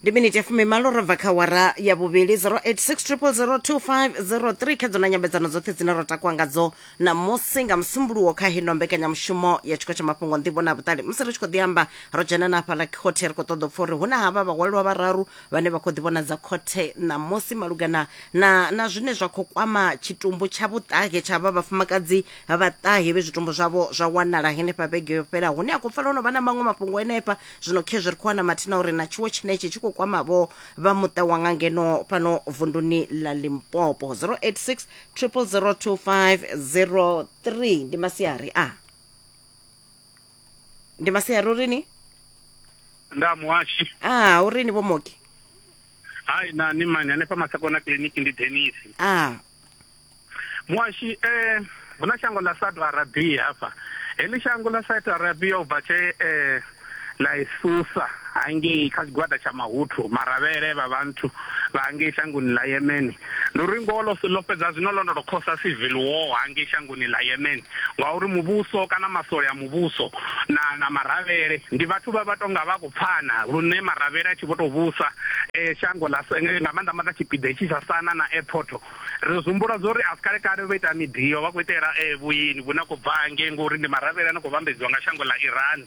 ndi miniti ya fumi malo ro bva kha wara ya vhuvhili 0860002503 kha dzo na nyambedzano dzoṱhe dzine ro takuwa ngadzo namusi nga musumbuluwo kha hino mbekanyamushumo ya tshiko tsha mafhungo nḓivho na vhuṱali musi ri tshi khou ḓi amba ro dzhena na hafhaḽa khothe ri khou ṱoḓa u pfa uri hu na havha vhahwalelwa vhararu vhane vha khou ḓi vhonadza khothe namusi malugana na, na zwine zwa khou kwama tshitumbu tsha vhuṱahe tsha vha vhafumakadzi vhaṱahe vhe zwitumbu zwavho zwa wanala henefha vhege yo fhela hune a khou pfala ono vha na maṅwe mafhungo henefha zwino khezwi ri khou wana mathina uri na tshiwo tshenetshi tshi khou kwamavho vha muṱa wa nga ngeno fhano vunduni ḽa limpopo 086 002503 ndi masiari a ndi masiari uri ni nda muhashi a uri ni vho moki hai na ni mani hanefha masakona kiliniki ndi denisi a muashi eh hu na shango ḽa Saudi Arabia hafha heḽi shango ḽa Saudi Arabia u bva tshe eh ḽa isusa hangei kha tshigwada tsha mahuthu maravhele vha vhanthu vha hangei shangoni ḽa Yemen ndi uri ngoho ḽo fhedza zwino ḽo no tou khosa civil war hangei shango shangoni ḽa Yemen, ngauri muvhuso kana masole a muvhuso na na maravhele ndi vhathu vha vha tonga vha khou pfana lune maravhele a tshi vho tou vhusa shango ḽa nga maanḓa maanḓa tshipiḓa itshi tsha Sana na airport ri zwi humbula zwori a si kale kale vho ita miḓio vha khou itela vhuini vhune ha khou bva hangei ngori ndi maravhele a no khou vhambedziwa nga shango ḽa Iran.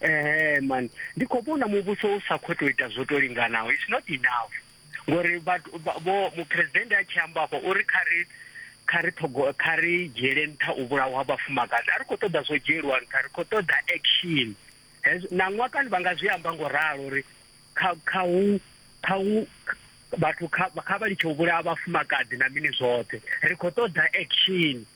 ehe man ndi khou vhona muvhuso u sa khou tou ita zwo to linganaho its not enough ngori vho muphuresidennde a tshi amba afho uri kha ri kha ri thogo kha ri dzhiele nṱha u vhulawa vhafumakadzi a ri khou ṱoḓa zwo dzhielwa nṱha ri khou ṱoḓa action na ṅwakani vha nga zwi amba ngo ralo uri kha kha hu kha hu vhathu kha vha litshe u vhulaha vhafumakadzi na mini zwoṱhe ri khou ṱoḓa action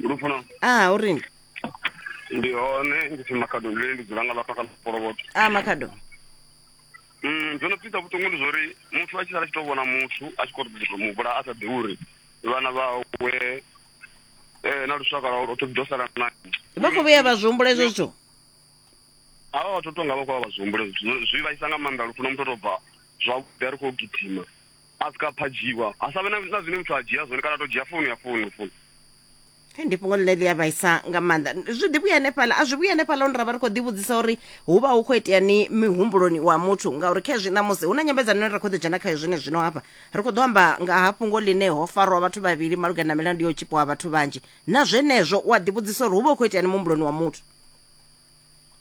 lufuna a u rini ndi hone ndi pfi makhado ndile ndi dzula nga lafha kha lufoloboto a makhado Mm, dzo no pfisa vhuṱungu ndi zwori muthu a tshi sala a tshi to vhona muthu a tshi khou tou mu vhula a sa ḓi uri vhana vhawe eh, na lushaka lwawe lwoṱhe ḓo sala na vha khou vhuya vha zwi humbula hezwo zwithu avha vhathu tonga vha khou vha vha zwi humbule zwithu zwi vhaisa nga maanḓa lufuna muthu o tou bva zwavhuḓi a ri khou gidima a sika a phadzhiwa ha sa vhe na na zwine muthu a dzhia zwone kana a to dzhia founu ya founu founu Hei, ndi fhungo ḽine ḽi a vhaisa nga maanḓa zwi ḓi vhuya hanefhaḽa a zwi vhuya hanefhaḽa hune ra vha ri khou ḓivhudzisa uri hu vha hu khou itea ni mihumbuloni wa muthu ngauri kha hezwi ṋamusi hu na nyambedzano ine ra khou ḓo dzhena khayo zwine zwino hafha ri khou ḓo amba nga ha fhungo ḽine ho farwa vhathu vhavhili malugana na milandu ya u tshipiwa ha vhathu vhanzhi na zwenezwo u a ḓivhudzisa uri hu vha hu khou itea ni muhumbuloni wa muthu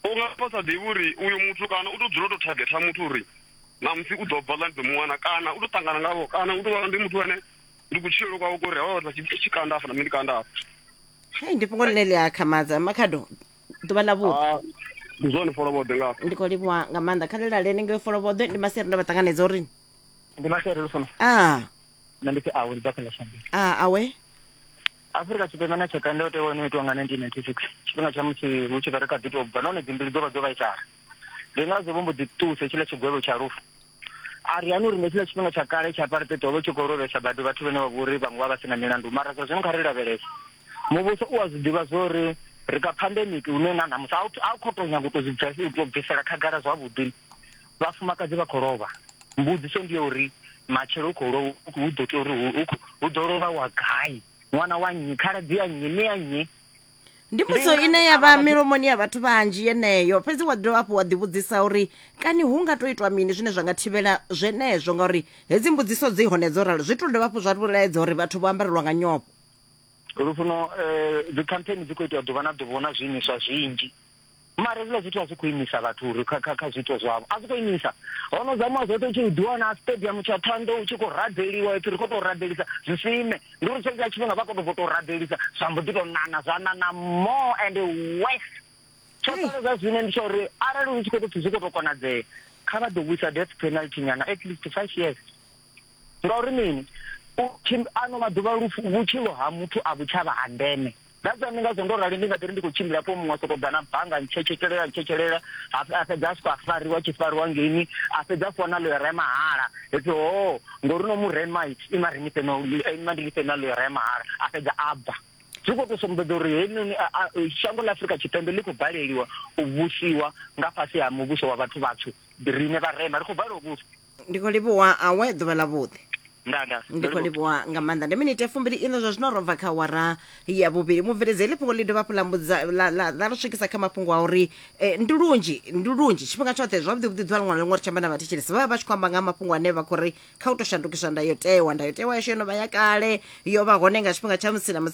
u nga vha sa ḓivhi uri uyo muthu kana u tou dzula u tou thagetha muthu uri namusi u ḓo bva ḽa ndi ḓo muwana kana u tou ṱangana ngavho kana u tou vha ndi muthu ane ndi kutshilelo kwawe kori hawa vhathu vha tshi kanda afha na nṋe ndi kanda afha hei ndi fhungo ḽine ḽi a khamadza makhado ḓuvha ḽa vhuḓi ah, ndi zwone folovhoḓe ngafha ndi khou livhuwa nga maanḓa kha ḽilale ni ngeo folovhoḓe ndi maseri ndo vha ṱanganedza uri ndi maseri lufuna a nṋe ndi pfi awe ndi ḓa kha ḽa shanduka a awe Afurika Tshipembe na tshaka ndayotewa yo no itiwa nga 1996 tshifhinga tsha musi hu tshi vha ri kha ḓi tou bva nahone dzimbili dzo vha dzo vhaisala. Ndi ngazwo vho mbo ḓi ṱusa hetshiḽa tshigwevho tsha lufu. A ri hana uri nga hetshiḽa tshifhinga tsha kale tsha apartheid ho vha hu tshi khou lovhesa badi vhathu vhane vha vha uri vhaṅwe vha vha si na milandu. Mara zwa zwino kha ri lavhelese. Muvhuso u a zwi ḓivha zwa uri ri kha phandemiki hune na ṋamusi a u khou tou nyaga u tou zwi bvisela khagala zwavhuḓi. vhafumakadzi vha khou lovha, mbudziso ndi ya uri matshelo hu khou lovha hu ḓo tea uri hu ḓo lovha wa gai, ṅwana wa nnyi, khaladzi ya nnyi, mme ya nnyi? ndi mbudziso ine ya vha milomoni ya vhathu vhanzhi yeneyo fhedzi wa dovha hafhu wa ḓivhudzisa uri kani hu nga to itwa mini zwine zwa nga thivhela zwenezwo ngauri hedzi mbudziso dzi hone dzo ralo zwi to dovha hafhu zwa vhulaedza uri vhathu vho ambarelwa nga nyofho lufuno um eh, dzikhampheni dzi khou itiwa ḓuvha na ḓuvha hu na zwiimiswa zwinzhi mara hezwiḽa zwithu a zwi khou imisa vhathu uri kha kha kha zwiito zwavho a zwi khou imisa ho no zamiwa zwoṱhe u tshi ḓiwana stadium tsha thondo u tshi khou rabeliwa ipfi ri khou tou rabelisa zwi sime ndi uri tshentsha tshifhinga vha khou tou tou rabelisa zwa mbo ḓi tou nana zwa nana more and worse tsho sala zwa zwine ndi tsha uri arali hu tshi khou tou pfi zwi khou tou konadzea kha vha ḓo vhuisa death penalty nyana at least five years ngauri mini ano maḓuvha vhutshilo ha muthu a vhutshava ha ndeme That's ndi ngazwo ndo rali ndi nga ḓi ri ndi khou tshimbila hafho muṅwe a sokou ḓa na banga ntshetshetshelelela ntshetshelela a fhedza a siko a fariwa tshi fariwa ngeini a fhedza a fhiwa na loyara ya mahala hepfi ho oh, ngori no mu rema ima ri nifhe no eh, ima ndi nifhe na loyara ya mahala a fhedza a bva zwi khou tou sumbedza uri heinoni shango ḽa afurika tshipembe ḽi khou baleliwa u vhusiwa nga fhasi ha muvhuso wa vhathu vhatswu riṋe vharema ri khou balelwa u vhusa ndi khou livhuwa awe ḓuvha ḽa vhuḓi nda nda ndi khou livhuwa nga maanḓa ndi minite fumbili ino zwa zwino ro bva kha wara ya vhuvhili mubveledzi heḽi fhungo ḽi dovha hafhu ḽa mbudza- ḽa- ḽa- ḽa ri swikisa kha mafhungo a uri eh, ndi lunzhi ndi lunzhi tshifhinga tshoṱhe zwavhuḓi vhuḓi ḓuvha liṅwe na liṅwe ri tshi amba na vhathetshelesi vha vha vha tshi khou amba nga ha mafhungo ane vha khou ri kha u tou shandukiswa ndayotewa ndayotewa yashu yo no vha ya kale yo vha hone nga tshifhinga tsha musi na musi